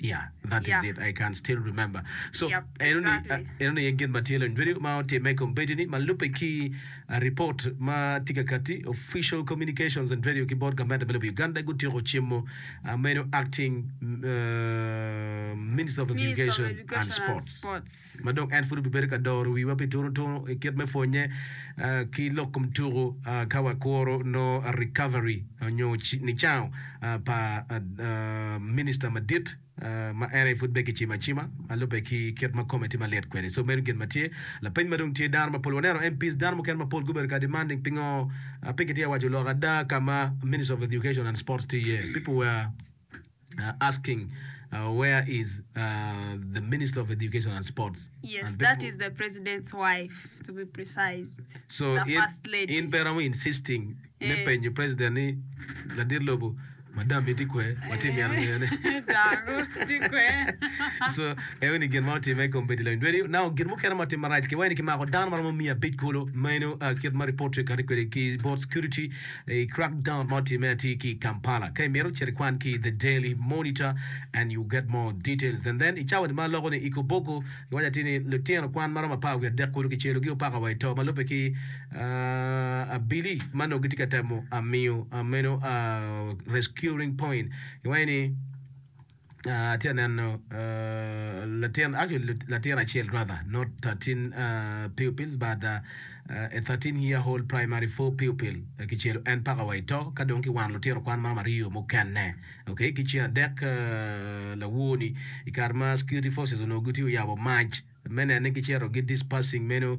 Yeah, that is it. I can still remember. So, Yep, eno ni exactly. ah, eno ni aye gin ma tye lony video ma otimme i kombeddi ni ma lubbe ki ah, report ma tye ka katti official communications and radio ki bot gamente me lobo Uganda gutyeko cimo ah, meno acting ah, minister of Minister of education, Education and and sports Sports. ma dong en pud obibedo ka doro wiwa pi tunu tunu i kit me pwonye ah, ki lok kom tuku ah, ka wakuro no recovery onyo ci- nicango pa Minista Madit ma ene pud bene kicimo acima ma lubbe ki kit ma kome tye malit kwede. So meno gin ma tye. Lapeny ma dong tye dano mapol waneno MPs dano mukene mapol gubedo ka demanding pingo pe kitye ka waco lok ada ka ma Minister of Education and Sports tye iye. People were asking where is the Minister of Education and Sports Yes, and that people is the President's wife, to be precise. so The in, First Lady. in pe romo insisting me penyo president ni, Ladit lobo, madam-mi tye kwee? Watye ka mito ngeyo ni daku tye kwee? Co, eyo ni gin ma otimme i kom bedo i lweny dweni onango gin mukene ma otimme marac. Kiwaco ni kimako dano ma romo miya abic kulu. Meno a kit ma ripot tye kati kwede ki Border Security i crackdown ma otimme atir ki i Kampala. Ka imito, cit ikwan ki i The Daily Monitor and you get more details. And then, i cawa-ni ma loko ni Ikobogo, Iwaco atir ni litino kwan ma romo apar wiye adek kulu kicelogi opaka wa i to ma lubbe ki abili ma nongo gitye ka temo miyo meno rescuing point. Iwaco ni atye ka neno latin actually latin acel rather not 13 pupils but a 13 year old primary four pupil kicelo en paka wa i to ka dong kiwano litino kwan ma romo aryo mukene. Doki ki ceng adek lawor-ni, i kare ma security forces onongo gitye oyabo mac me neno ni gicito gi dispersing meno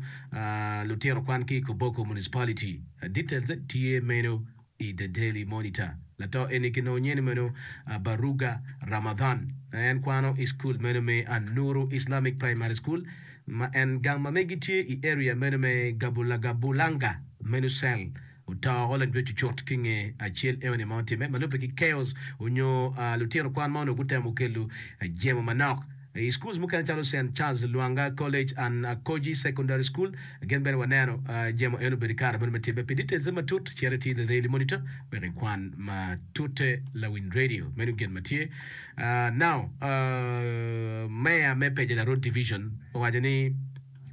lutino kwan ki i Koboko Municipality. Details tye meno i The Daily Monitor. Lato eni kinongo nyene meno Baruga Ramadhan ma en kwano i school meno me Anuru Islamic Primary School ma en gang ma megi tye i area meno me Gabulagabulanga menu cell Otoko lajwe cucut ki nge acel eoni ma otimme ma lubbe ki chaos onyo lutino kwan ma onongo gutemo kelo jemo manok i schools mukene calo Saint Charles Lwanga College and Akoji Secondary School gin bene waneno jemo eno obedo i kare meno me timme. Pi details ne matut cit iti The Daily Monitor wek ikwan matute lawiny radio. Meno gin ma tye. Now, Mayor me Pejela Road Division owaco ni,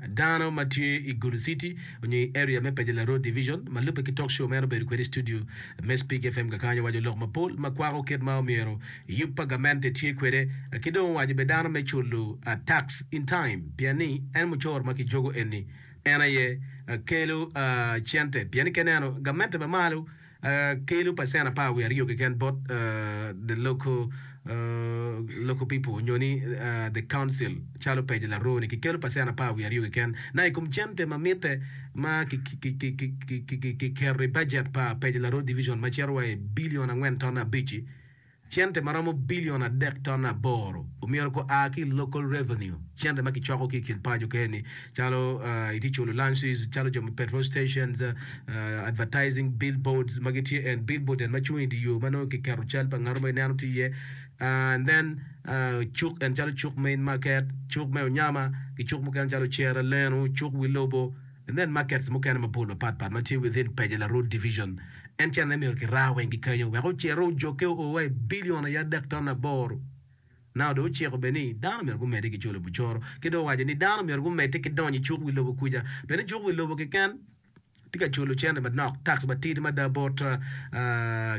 Dano ma tye i Gulu City onyo i area me Pejela Road Division ma lubbe ki talk show meno obedo kwede i studio me Speak FM kakanya owaco lok mapol ma kwako kit ma omyero yub pa gamente tye kwede ki dong owaco bene dano me culo tax in time pien ni en mucoro ma kijogo eni en aye kelo cente pien ni ka ineno gamente ma malo kelo pacent apar wiye aryo keken bot the local people nyo ni the council calo pege laroo ni kikelo pacent apar wiye aryo keken na i kom cente ma mitte ma kiketo i bajet pa pege laroo division ma cito wa i bilion angwen ton abic-ci. Cente ma romo bilion adek ton aboro omyero ko a ki i Local Revenue, cente ma kicoko ki i kin paco keni, calo itye culo lunches, calo jo me petrol stations, advertising billboards ma gitye en billboard en ma cung i dye yo ma nongo kiketo cal pa ngat mo ineno tye iye, and then cuk en calo cuk me in market, cuk me onyama ki cuk mukene calo cere leno, cuk wi lobo. Nen markets mukene mapol mapat pat ma tye within Paje la Road Division. En cene ne myero ki raa weng ki kenyo wek ocere ojoke oo wa i billion aye adek ton aboro. Nao dong ociko bene ni dano myero gumede ki cwalo bucoro ki dong owaco ni dano myero gumede ki donyo i cuk wi lobo kuca bene cuk wi lobo kiken tye ka cwalo cente manok, tax, matidi mada bot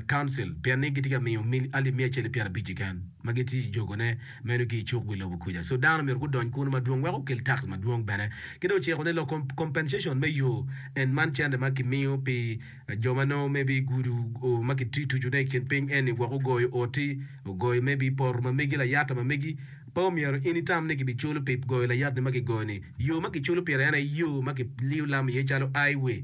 Council pien ni gitye ka miyo alip miya acel ki pyera abic kiken ma gitye jogo ne. meno ki i cuk wi lobo kuca. So dano myero gudony kunu madwong wek okel tax madwong bene. Ki dong ociko ni lok compensation me yo en man cente ma kimiyo pi jo ma nongo maybe gudo o ma kitucu ne i kin piny eni wek ogoyo oti, ogoyo maybe poto ma megi, layata ma megi, pe omyero in itam ni kibiculo pi goyo layat ni ma kigoyo ni. Yo ma kiculo pire en aye yo ma kiliyo lam iye calo highway.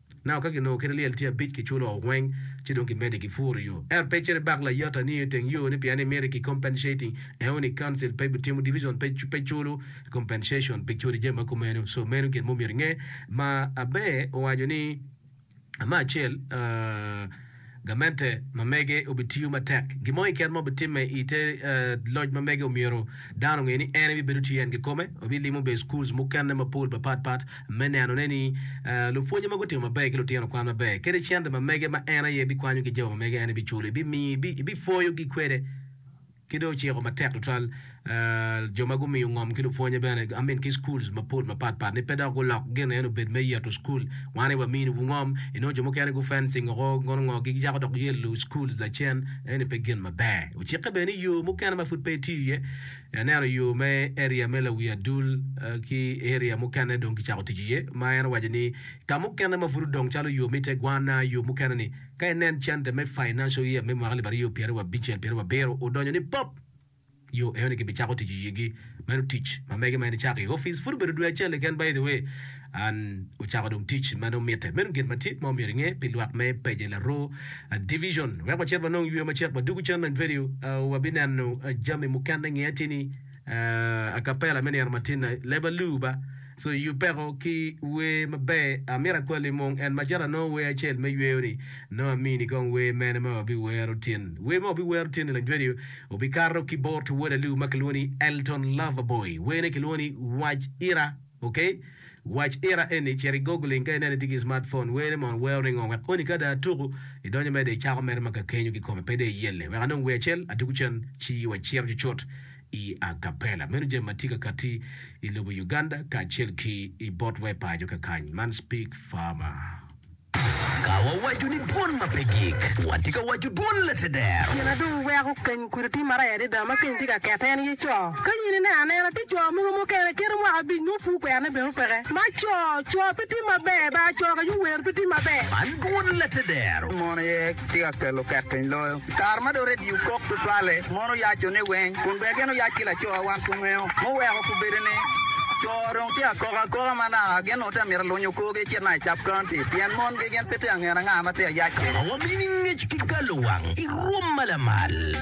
Nao ka ginongo kite lyel tye abic kiculo weng ci dong kimede gi puro yo. Ento pe cito ibak layata ni iteng yo ni pien imito ki compensating eo ni council pe butimo division pe pe culo compensation pi codi jami ma kumeno so meno gin mo myero inge ma Abe owaco ni ma acel ahh gamente ma mege obitiyo matek. Gin mo keken ma obitimme i te loc ma mege omyero dano onge ni en ebibedo tye en kikome. Obilimo bene schools mukene mapol mapat pat me neno ne ni lupwonye ma gutimo maber ki lutino kwan maber kede cente ma mege ma en aye bikwanyo ki jami ma mege en ebiculo, ebipwoyo gi kwede. Ki dong ociko matek tutwal jo ma gumiyo ngom ki lupwonye bene, I mean ki schools mapol mapat pat ni pe dok gulok gin eno obed me yeto school wani wa mini wu ngom, inongo jo mukene gu fencing oko kono ngo gi gicako dok yelo schools lacen eni pe gin maber. Ocikke bene ni yoo mukene ma pud pe itiyo iye, aneno yoo me area me lawi adul ki area mukene dong gicako tic iye ma en owaco ni ka mukene ma pud odong calo yoo me ite gwana yoo mukene ni, Ka inen center me financial year me mwaka alip aryo pyera wa bicel pyera wa biro odonyo ni pop, yo eno ni ki bi cako tic i yigi. Meno tic ma mege ma en icako i office pud obedo dwe acel keken by the way and ocako dong tic ma dong mitte. Meno gin ma tye ma omyero inge pi lwak me page Laroo division. Wek wacit wanong yweyo macek wadwogo cen ma i video wa bi neno jami mukene nge ateni. a cappella me nino matinna leba luba so iyu peko ki wer maber amito akwali mung en macalo anongo wer acel me yweyo ni nongo amini kong wer mene ma wabi wero tin wer ma wabi wero tin ni lang radio obi kato ki bot wod alu ma kilwongo ni Elton Loverboy wene kilwongo ni wac ira Ok, wac ira eni, cit i Googling ka ineno itye ki smartphone, wene mono weo ni ngo? Wek koni ka dong atuku, idonyo medo icako mere ma kakenyo kikome pe dong iyelle. Wek anong wer acel, atuku cen, ci wacito cucut i a cappella. Meno jami ma tye ka katti i lobo Uganda kacel ki i bot wa i paco kakany man. Speak Farmer. Ka wawaco ni dwon ma pe gik, watye ka waco dwon Lateder. Gin ma dong weko keny kudi tye maraya adada ma keny tye ka kette en aye co. Ka in ineno anena, tye co mogo mukene kite mwaka abic nongo pud kwerne bene opeke. Ma co, co pe tye maber, bar co ka yubwer pe tye maber. Man dwon Lateder. Mon aye tye ka kelo ket piny loyo. I kare ma dong redio kok tutwalle, mon oyaco niweng kun bene gin oyac ki lacowa wan kungeyo. Muweko kubedo ni co dong tye ka kok akoka manaka. Awobi amito alunyo korgi ecit ma i Sub County pien mon gegen pe tye angen anga ma tye ayac-ci. Awobi ni ngec ki galo wang i rwom ma lamal.